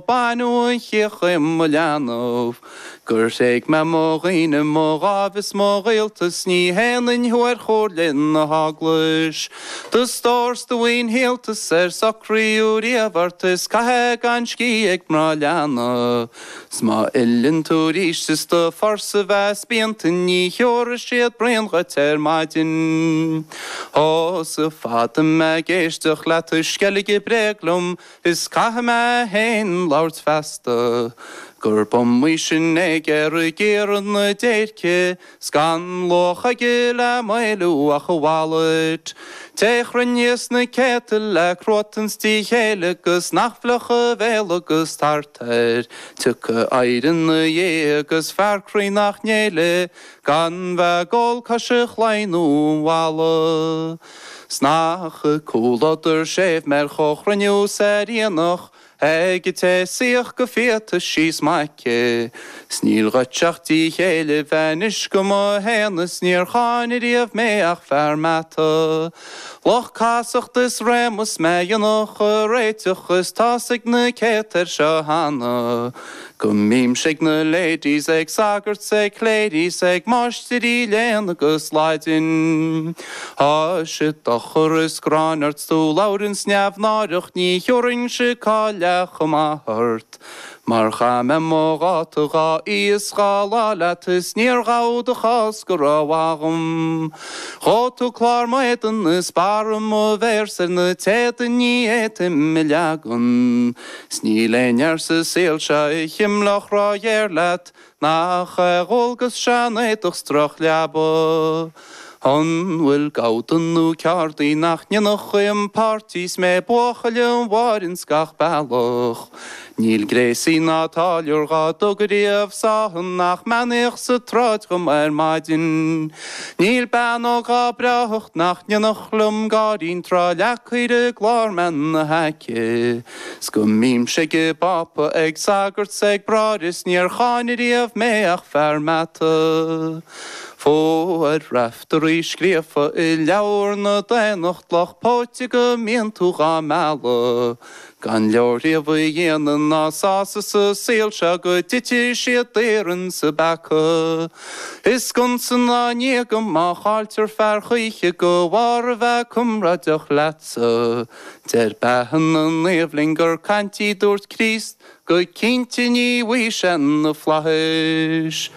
Baineadh an chíoch dhíom i mo leanbh Gur thréig mé mo dhaoine, mo dháimh is mo ghaolta 's Ní shéanfainn thú ar chomhairle na hEaglais, Do stór 's do mhaoin shaolta 's ar socraíodh riamh ort Is caith é gan scíth ag mná leanna 's má fhilleann tú arís Is do phurse a bheith spíonta Ní thiúrfaidh siad braon dhuit ar maidin Ó, 's fada mé ag éisteacht leat ag sceilgeadh bréag liom Is caithfidh mé féin labhairt feasta, gurb iomaí sin naegar ag iarraidh na déirce, 's gan luach aige le m'éiliú ach a wallet. Té chruinneas na céadta le cruatan 's díth céille 'gus nach bhfliuchfaidh a bhéal agus tart air tiocfaidh oidhre 'na dhiaidh 'gus fear croí nach ngéillfidh gan bheith ag ól cois a chlaí nó an bhalla. 'S nach comhluadar séimh mé ar chomhchruinniú 's ar aonach ag an té shuífeadh go fiata síos i m'aice, 'S níl dhuit ach díth céille bheith anois do mo shéanadh 's níor cháin riamh mé ach fear meata, Lucht casachta is réama 's mé dhéanfadh a réiteach is tá's ag na céadta air seo cheana. Go mbímse ag na ladies, ag sagairt 's ag cléirigh 's ag máistirí léinn agus Laidin. Á, is dochar is gráin ort 's tú labhranns neamhnáireach ní thiúrfainnse cáil leath chomh maith ort. Mar chaith mé mo dháta dhá oíche 's dhá lá leat is níor ghabh do chás go rómhaith dhom. Dhóigh tú clár m'éadain is barra mo mhéar 's ar na téada ní fhéadaim a leagan. 'S níl aon fhear sa saol seo a chimleodh róghéar leat Nach é a dhualgas sean-éadach 's droch-leaba An bhfuil gabha dubh nó ceardaí nach ndéanfadh dhíom páirtí 'S mé buachaill an bháire 's gach bealach Níl gréasaí ná táilliúr dhá dtug ariamh sáthadh Nach mbeannaíodh sa tsráid dhom ar maidin Níl bean óg dhá breáthacht nach ndéanfadh liom gáire an tráth leagfaí ar an gclár mé ina haice 's go mbímse ag an bPápa ag sagairt 's ag bráithre 's níor cháin ariamh mé ach fear meata Fuair Raiftearaí scríofa i leabhar na daonnacht Lucht póite go mbíonn tú dhá mealladh. Gan leorghníomh a dhéanamh ná sásamh sa saol seo go dtitfidh siad daor insa bpeaca. I sconsa ná i ndíoga má chailltear fear choíche de bharr a bheith comráideach leatsa. Deir beatha na naomh linn gur caint í dúirt Críost go cinnte ní bhfaighidh sé na flaithis.